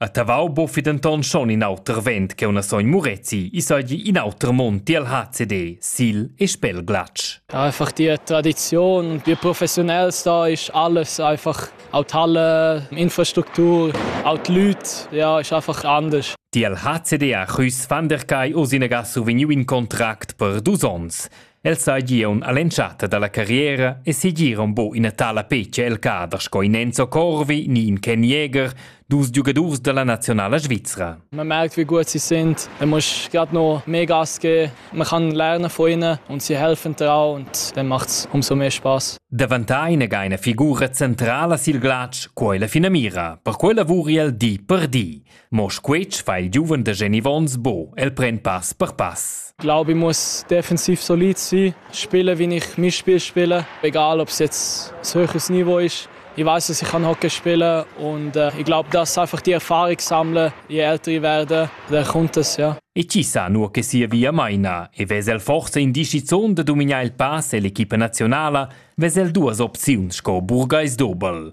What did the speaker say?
A Tavau boffi denton schon in auter vent che una sogn Murezi, i sagli in auter mond tiel HCD, Sil e Spelglatsch. Einfach die Tradition, die professionell da ist alles, einfach auch die Halle, Infrastruktur, auch die Leute, ja, ist einfach anders. Tiel HCD a Chüs van der Kai o sinaga survegniu in contract per dus ons. El seigi aunc all'entschatta dalla carriera e segira aunc buca ina tala petga el cader sco in Enzo Corvi ni in Ken Jäger, dus giugadurs dalla nazionala svizra. Man merkt, wie gut sie sind. Er muss gerade noch mehr Gas geben. Man kann lernen von ihnen und sie helfen dir auch und dann macht es umso mehr Spaß. Davantar ina geina figura centrala sil glatsch, quella finamira. Per quella vuri el di per di. Mo squetsch fa il giuven da Jenny Vons bo, el pren pass per pass. Ich glaube, ich muss defensiv solid sein. Spielen, wie ich mein Spiel spiele. Egal, ob es jetzt ein höheres Niveau ist. Ich weiß, dass ich kann Hockey spielen und äh, ich glaube, das ist einfach die Erfahrung sammeln, je älter ich werde, dann kommt es, ja. E ci sa nuo che sia via maina e vesel forse in discizion da dominar il pass e l'equipa nazionala vesel duas opziuns sco burgais dobel.